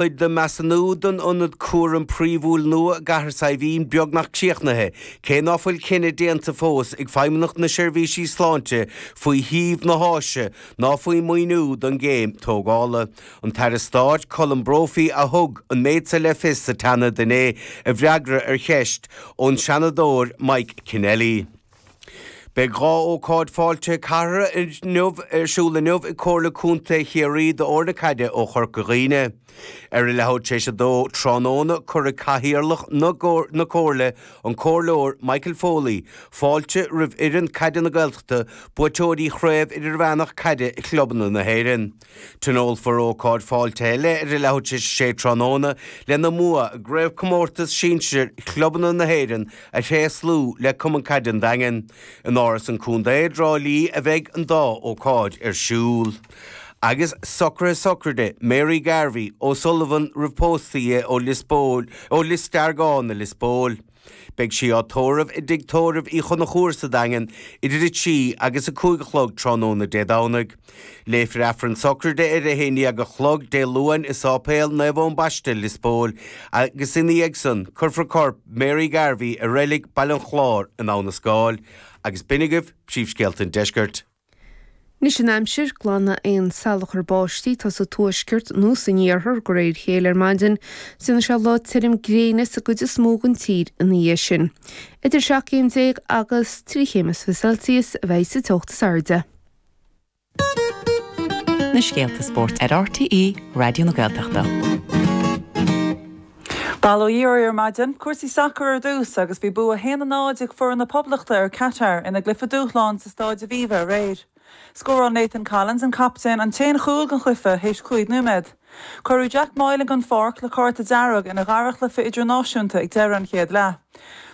Beidh an measúnú don ionad cúraim phríomhúil nua i gCathair Saidhbhín beagnach críochnaithe, cé ná fuil cinneadh déanta fós ag Feidhmeannacht na Seirbhíse Sláinte faoi shuíomh na háise ná faoin maoiniú don gcéim tógála. An tAire Stáit Colm Brophy a thug an méid seo le fios sa tSeanad inné i bhfreagra ar cheist ón Seanadóir Mike Kennelly. Beidh dhá ócáid fáilte cathartha inniu ar siúl inniu ag Comhairle Contae Chiarraí d'fhoirne caide ó Chorca Dhuibhne. Ar a leathuair tar éis a dó tráthnóna, cuirfidh Cathaoirleach na Comhairle, an Comhairleoir Michael Foley, fáilte roimh fhoireann Caide na Gaeltachta, buaiteoirí Chraobh Idirmheánach Caide Chlubanna na hÉireann. Tionólfar ócáid fáilte eile ar a leathuair tar éis a sé tráthnóna lena mbua i gCraobhchomórtas Sinsir Chlubanna na hÉireann a thréaslú le Cumann Caide an Daingin. In Áras an Chontae i dTrá Lí a bheidh an dá ócáid ar siúl. Agus socruithe sochraide Mary Garvey, O'Sullivan roimh pósadh di ó Lios Póil, ó Lios Deargáin i Lios Póil. Beidh sí á tórramh i dTigh Tórraimh Uí Chonchúir sa Daingean idir 3 agus 5 a chlog tráthnóna Dé Domhnaigh. Léifear Aifreann sochraide ar 11 a chlog Dé Luain i Sáipéal Naomh Eoin Baiste, Lios Póil, agus ina dhiaidh san cuirfear corp Mary Garvey i Reilig Bhaile an Chláir in Abhainn an Scáil. Agus b'in agaibh príomhscéalta an deiscirt. Anois an aimsir glanfaidh aon salachar báistí atá sa tuaisceart nó san iarthar de réir a chéile ar maidin, déanfaidh sé lá tirim gréine sa gcuid is mó den tír ina dhiaidh sin. Idir seacht gcéim déag agus trí chéim is fiche Celsius a bheidh sa teocht is airde. na scéalta spóirt ar RTÉ Raidió na Gaeltachta. Bail ó Dhia oraibh ar maidin. Cúrsaí sacair ar dtús agus bhí bua 1 0 ag foireann na Poblachta ar Catar ina gcluiche dúshláin sa Stáid Aviva aréir. Scóráil Nathan Collins, an captaen, an t-aon chúl den chluiche théis cúig nóiméad. Cuireadh Jack Moylan den pháirc le cárta dearg ina dhara chluiche idirnáisiúnta ag deireadh an chéad leath.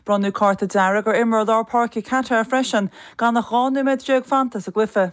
Bronnadh cárta dearg ar imreoir lár páirce Catar freisin gan ach 12 nóiméad fanta sa gcluiche.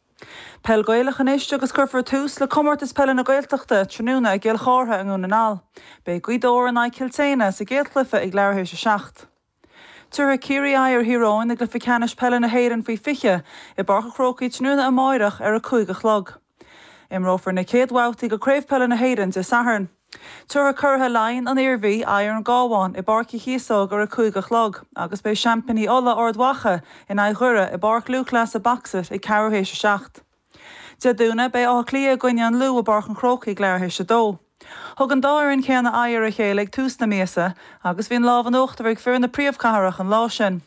Peil Ghaelach anois agus cuirfear tús le Comórtas Peile na Gaeltachta tráthnóna i gCill Chartha i nDún na nGall. Beidh Gaoth Dobhair in aghaidh Cill tSéadhna sa gcéad chluiche ag leathuair théis a seacht. Tabharfaidh Ciarraí aghaidh ar Thír Eoghain i gcluiche ceannais peile na hÉireann faoi 20 i bPáirc an Chrócaigh tráthnóna amáireach ar a cúig a chlog. Imreofar na céad bhabhtaí de Chraobh Peile na hÉireann Dé Sathairn. Tabharfaidh curaidh Laighean, An Iarmhí, aghaidh ar an gCábhán i bPáirc Uí Chíosóg ar a 5 a chlog agus beidh seaimpíní Uladh, Ard Mhacha, in aghaidh Dhoire i bPáirc Lúthchleasa Box-It ag ceathrú théis a seacht. Dé Domhnaigh, beidh Áth Cliath i gcoinne an Lú i bPáirc an Chrócaigh ag leathuair théis a dó. Thug an dá fhoireann céanna aghaidh ar a chéile ag tús na míosa agus bhí an lámh in uachtar ag fir na príomhchathrach an lá sin.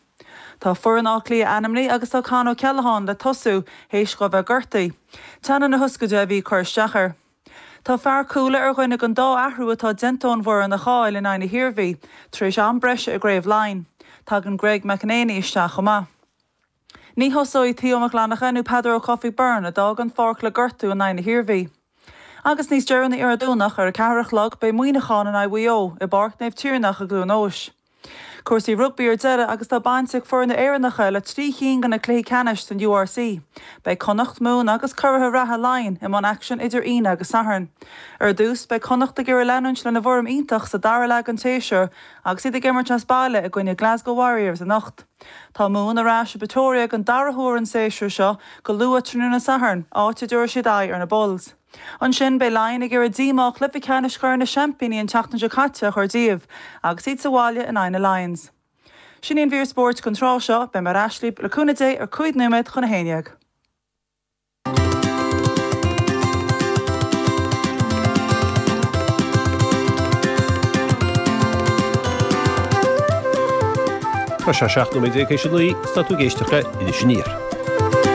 Tá foireann Átha Cliath ainmnithe agus tá Con O'Callaghan le tosú théis dhó a bheith gortaithe. Teannán na hioscaide a bhí ag cur isteach air. Tá fear Chuala ar dhuine den dá athrú atá déanta ón bhfoireann a chaill in aghaidh na hIarmhí, tar éis am breise i gCraobh Laighean. Tagann Greg McEneaney isteach chomh maith. Ní thosóidh Theo Mac Fhlannacha nó Peadar Ó Cofaigh Byrne, a d'fhág an pháirc le gortú in aghaidh na hIarmhí. Agus níos deireanaí ar an Domhnach, ar a ceathair a chlog, beidh Muineachán in aghaidh Mhaigh Eo, i bPáirc Naomh Tiarnach i gCluain Eois. Cúrsaí rugbaí ar deireadh agus tá baint ag foirne Éireannacha le trí chinn de na cluichí ceannais san URC. Beidh Connacht, Mumhan agus curaithe reatha Laighin i mbun aicsin idir Aoine agus Satharn. Ar dtús, beidh Connacht ag iarraidh leanúint lena bhfoirm iontach sa dara leath den séasúr agus iad ag imirt as baile i gcoinne Glasgow Warriors anocht. Tá Mumhan ar ais i bPretoria den dara huair an séasúr seo go luath tráthnóna Sathairn, áit a dtabharfaidh siad aghaidh ar na Bulls. Ansin, beidh Laighin ag iarraidh díomá chluiche ceannais Chorn na Seaimpíní an tseachtain seo caite a chur díobh agus iad sa bhaile in aghaidh na Lions. Sin í an mhír spóirt don tráth seo. Beidh mé ar ais libh, le cúnamh Dé, ar cúig nóiméad chun a haon déag. Tá sé seacht nóiméad tar éis a naoi, is tá tú ag éisteacht le Iris Aniar.